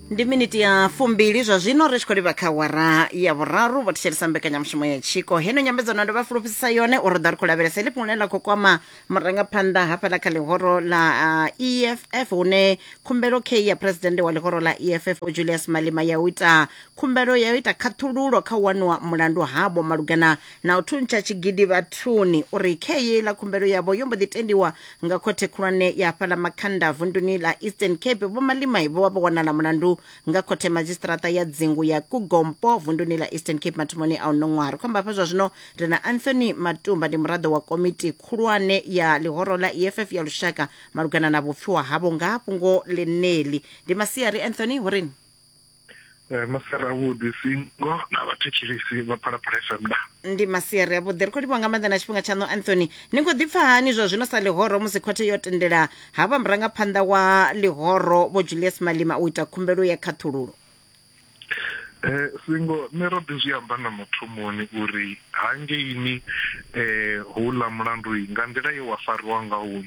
ndi miniti ya fumbili zwa zwino ri tshi khou livha kha wara ya vhuraru vho thetshelesa mbekanyamushumo ya tshiko heno nyambedzano ndo vha fulufhedzisa yone uri ḓa ri khou lavhelesa ḽi fhungule ḽa khou kwama murangaphanḓa hafhaḽa kha ḽihoro ḽa uh, eff hune khumbelo k ya phuresidennde wa ḽihoro ḽa eff vho julius malima ya u ita khumbelo ya u ita khaṱhululo kha u waniwa mulandu havho malugana na u thuntsha tshigidi vhathuni uri khe yeiḽa khumbelo yavho yo mbo ḓi tendiwa nga khothe khulwane ya hafhaḽa makhanda vunduni ḽa eastern cape vho malimai vho vha vho wanala mulandu nga khothe madzhisiṱiraṱa ya dzingu ya kugompo vunduni ḽa eastern cape mathomoni a uno ṅwaha ri khou amba hafha zwa zwino ri na anthony matumba ndi muraḓo wa komiti khulwane ya ḽihoro ḽa eff ya lushaka malugana na vhupfiwa havho nga ha fhungo ḽeneḽi ndi masiari anthony hurini Eh, masiari avhuḓi singo na vhathetshelisi vha phalaphala fm da ndi masiari avhuḓi ri khou livhuwa nga maanḓa na tshifhinga tshaṋu anthony ni khou ḓipfa hani zwa zwino sa ḽihoro musi khothe yo tendela ha vha murangaphanḓa wa ḽihoro vho julius malima u ita khumbelo ya khaṱhululo Eh singo nṋe ro ḓi zwi amba na mathomoni uri hangeini eh houḽa mulandu nga nḓila ye wa fariwa ngaho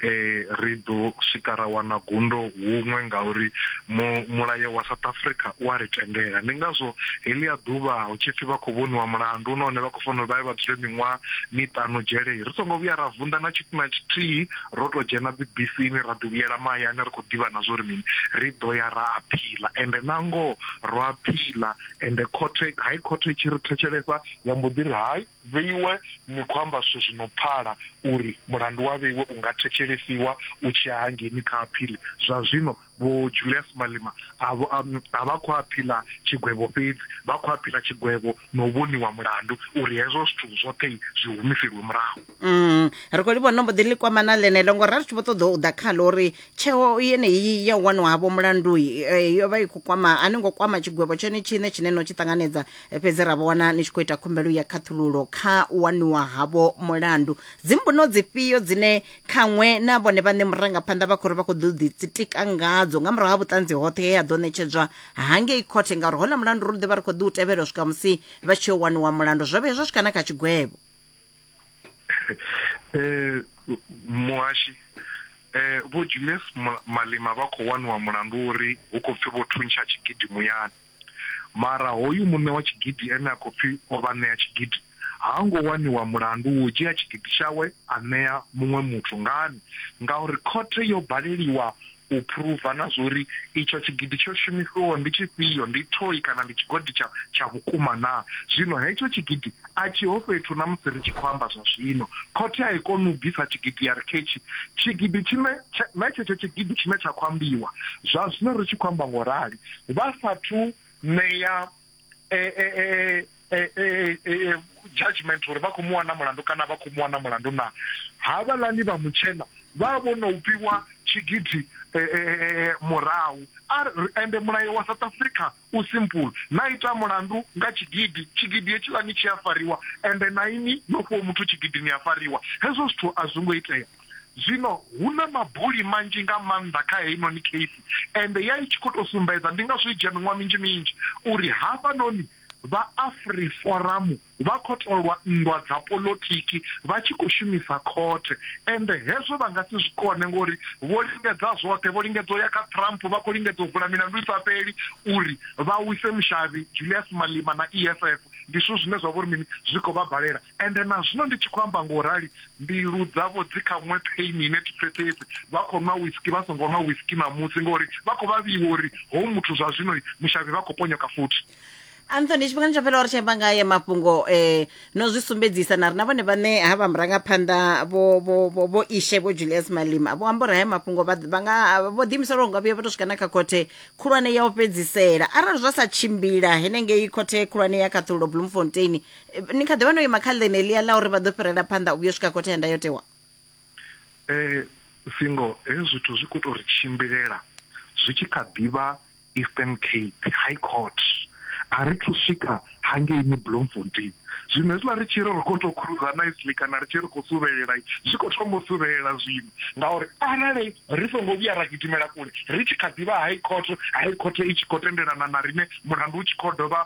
eh ri ḓo swika ra wana gundo huṅwe ngauri mulayo wa South Africa u a ri tendela ndi ngazwo heḽi a ḓuvha hu tshi pfhi vha khou vhoniwa mulandu u nahone vha khou fanela vha ye vha dzule miṅwaha miṱanu dzhelei ri songo vhuya ra vunḓa na tshithu na tshithihi ro tou dzhena bibisini ra ḓi vhuyela mahayani ri khou ḓivha na zwo ri mini ri ḓo ya ra aphila ende na ngoho ro aphila ende khothe hai khothe i tshi ri thetshelesa ya mbo ḓi ri hai Vheiwe, ni khou amba zwithu zwi no pfala uri mulandu wa Vheiwe u nga thetshelesiwa u tshi ya hangeni kha aphili. Zwa zwino Vho Julias Malema a vho a vha khou aphila tshigwevho fhedzi, vha khou aphila tshigwevho na u vhoniwa mulandu uri hezwo zwithu zwoṱhe zwi humiselwe murahu. Ri khou livhuwa no mbo ḓi ḽi kwama na ḽeneḽo ngo ra ri tshi vho ṱoḓa u ḓa khaḽo uri tsheo yeneyi ya u wanwa havho mulandu yo vha i khou kwama a ni ngo kwama tshigwevho tshone tshiṋe tshine no tshi ṱanganedza fhedzi ra vho wana ni tshi khou ita khumbelo ya khaṱhululo kha u waniwa havho mulandu dzimbuno dzifhio dzine khaṅwe na vhone vhaṋe murangaphanḓa vha khou ri vha khou ḓo ḓitsitika ngadzo nga murahu ha vhuṱanzi hoṱhe he ha ḓo ṋetshedzwa hangei khothe ngauri hona mulandu ro ḓi vha ri khou ḓi u tevhela u swika musi vha tshi yo waniwa mulandu zwo vhuya zwa swika na kha tshigwevho eh muhashi eh vho Julius Malema vha khou waniwa mulandu uri hu khou pfi vho thuntsha tshigidi muyani Mara hoyu muṋe wa tshigidi ene a khou pfi o vha ṋea tshigidi ha ngo waniwa mulandu wa u dzhia tshigidi tshawe a ṋea muṅwe muthu. Ngani? Ngauri khothe yo baleliwa u phuruva na zwa uri itsho tshigidi tsho shumisiwaho ndi tshifhio, ndi thoi kana ndi tshigodi tsha tsha vhukuma naa. Zwino hetsho tshigidi a tshiho fhethu na musi ri tshi khou amba zwa zwino. Khothe a i koni u bvisa tshigidi ya ri ketshi tshigidi tshine na tshetsho tshigidi tshine tsha khou ambiwa zwa zwino ri tshi khou amba nga u rali. vha sathu ṋea e, e, e, judgment uri vha khou mu wana mulandu kana vha khou mu wana mulandu na havhalani vha mutshena vha vho no fhiwa tshigidi murahu ende mulayo wa south africa u simple na ita mulandu nga tshigidi tshigidi hetshilani tshi a fariwa ende na ini no fhiwa muthu tshigidi ni a fariwa hezwo zwithu a zwo ngo itea Zwino hu na mabuli manzhi nga maanḓa kha heinoni kheisi, ende ya i tshi khou tou sumbedza, ndi ngazwo i dzhia miṅwaha minzhi minzhi, uri hafhanoni vha Afriforamu vha khou tou lwa nndwa dza polotiki vha tshi khou shumisa khothe. Ende hezwo vha nga si zwi kone, ngori vho lingedza zwoṱhe. Vho lingedza u ya kha Trump, vha khou lingedza u vula milandu i sa fheli uri vha wise mushavhi Julius Malema na EFF. Ndi zwithu zwine zwa vha uri mini? Zwi khou vha balela. Ende na zwino ndi tshi khou amba nga u rali, mbilu dzavho dzi kha nwe pheini ine thi pfesesi. Vha khou nwa whisky vha songo nwa whisky ṋamusi, ngauri vha khou vhavhiwa uri hoyu muthu zwa zwino mushavhi vha khou ponyoka futhi. Anthony, tshifhingani tsho fhelaho ri tshi amba nga aya mafhungo eh, no zwi sumbedzisa na ri na vhone vhaṋe ha vha murangaphanḓa vho vho vho vho ishe vho Julius Malema vho amba uri haya mafhungo vha vha nga vho ḓiimisela uri nga vhuya vha tou swika na kha khothe khulwane ya u fhedzisela arali zwa sa tshimbila henengei khothe khulwane ya khaṱhululo Bloemfontein ni kha ḓi vha no ima kha ḽene ḽia ḽa uri vha ḓo fhirela phanḓa u vhuyo swika khothe ya ndayotewa eh singo hezwi zwithu zwi khou tou ri tshimbilela zwi tshi kha ḓivha eastern cape high court a ri thu swika hangeini bloemfontein zwino hezwiḽa ri tshi ri ri khou tou khruza nicely kana ri tshi ri khou suvhelela zwi khou thoma u suvhelela zwino ngauri arali ri songo vhuya ra gidimela kule ri tshi kha ḓivha high court high court i tshi khou tendelana na rine mulandu u tshi khou dovha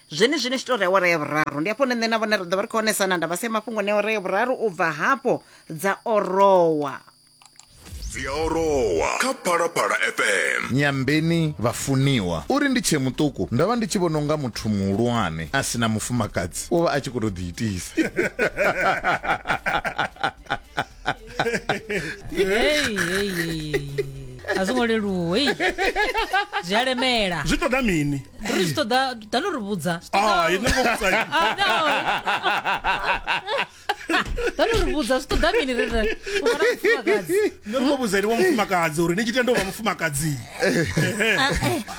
zwenezwino tshi tou ri awara ya vhuraru ndi hafho hune nṋe na vhone ri ḓo vha ri khou onesana nda vhasea mafhungo ne awara ya vhuraru u bva hafho dza orowa dzi a orowa kha phalaphala fm nyambeni vhafuniwa uri ndi tshee muṱuku ndo vha ndi tshi vhona unga muthu muhulwane a si na mufumakadzi u vha a tshi khou tou ḓiitisa Hey, hey, hey. a zwi ngo leluwa hey. zwi a lemela zwi ṱoḓa mini ri zwi ṱoḓa ḓa no ri vhudza Zwi ṱoḓa- Ah, ini ngo vhudza ini. Ah, no. ḓa no ri vhudza zwi ṱoḓa mini ri ri u vha na mufumakadzi no ri muvhudza ene wa mufumakadzi uri ni tshi tenda u vha mufumakadzi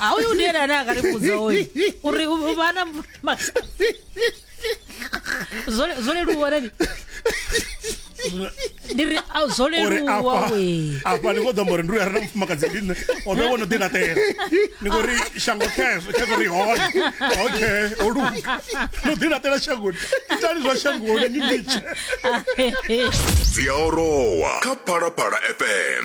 a uyu ndi ene ane a ka ri vhudza oyu uri u vha na mufumakadzi zwo leluwa rani ndi ri a zwo uri leluwa afha we afha ni khou ḓo amba uri ndi uya re na mufumakadzi ndi nṋe o vhe wo no ḓi laṱela ni khou ri shango khezwo khezwo ri hone okay o luga no ḓi laṱela shangoni itani zwa shangoni ni litshe dzi a orowa kha phalaphala fm